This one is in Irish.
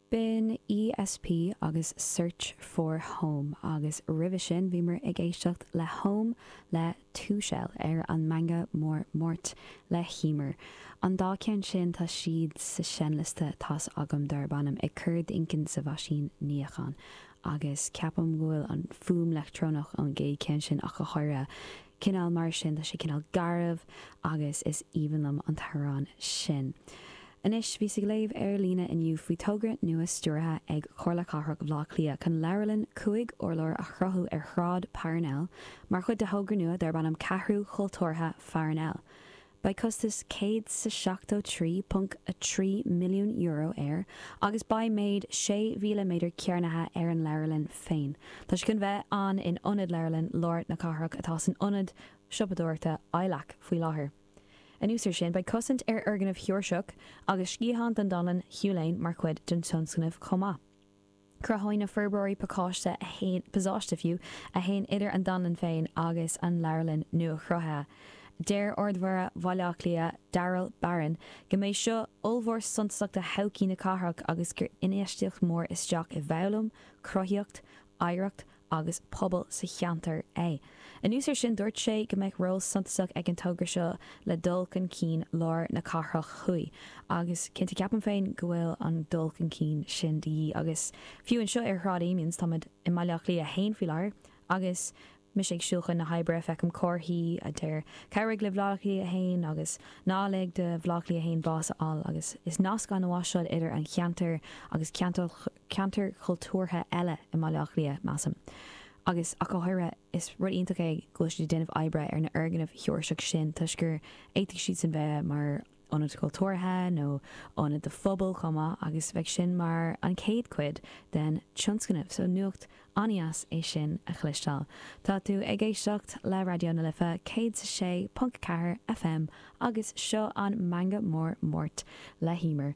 B'in ESP agus Search for Home agus roimhe sin bhíomar ag éisteacht le Home le Two Shell ar an Meangadh Mór Máirt le hEmer. An dá cheann sin tá siad sa seinnliosta atá agam darb ainm Ag Cur d'Inchinn sa Mheaisín Níocháin agus ceapaim go bhfuil an fuaim leictreonach ón gcéad cheann sin ach go háirithe cineál mar sin, tá sé cineál garbh agus is aoibhinn liom an t-amhrán sin. Anois, bhíos ag léamh ar líne inniu faoi thogra nua stiúraithe ag Comhairle Cathrach Bhleá Cliath chun leabharlann cúig urlár a chruthú ar Shráid Parnell mar chuid de thogra nua darb ainm Ceathrú Chultúrtha Pharnell. Beidh costas 173.3 milliún euro air agus beidh méid 6,000 méadar cearnaithe ar an leabharlann féin, tá sé chun bheith ann in ionad leabharlann lár na cathrach atá san ionad siopadóireachta ILAC faoi láthair. Anuas air sin, beidh cosaint ar fhoirgnimh Sheoirseacha agus sciathán den Dánlann Hugh Lane mar chuid den tionscnamh chomh maith. Cruthóidh na forbróirí pacáiste, pasáiste fiú, a théann idir an Dánlann féin agus an Leabharlann nua-chruthaithe. Deir Ard-Mhéara Bhaile Átha Cliath, Daryl Barron, go mbeidh seo ollmhór suntasach do thodhchaí na cathrach agus gur infheistíocht mhór isteach i bhfoghlaim, cruthaíocht, oidhreacht agus pobail sa cheantar é. Anuas air sin, dúirt sé go mbeidh ról suntasach ag an togra seo le dul chun cinn lár na cathrach thuaidh, agus cinnte ceapaim féin go bhfuil an dul chun cinn sin de dhíth agus fiú anseo ar Shráid Amiens, táimid i mBaile Átha Cliath 1 faoi láthair, agus mise ag siúl chun na hoibre feicim comharthaí a deir 'Cabhraigh le Bleá Cliath 1 agus ná lig do Bhleá Cliath 1 bás a fháil' agus is nasc an-mhaith é seo idir an ceantar agus ceantair ceantair chultúrtha eile i mBaile Átha Cliath, measaim, agus ach go háirithe. Is rud iontach é go bhfuil siad ag déanamh oibre ar na foirgnimh Sheoirseacha sin toisc gur fhéadfadh siadsan bheith mar ionaid chultúrtha nó ionaid do phobail chomh maith agus beidh sin mar an chéad cuid den tionscnamh. So nuacht an-dheas é sin a chloisteáil. Tá tú ag éisteacht le Raidió na Life 106.4 FM agus seo an Meangadh Mór Máirt le hEmer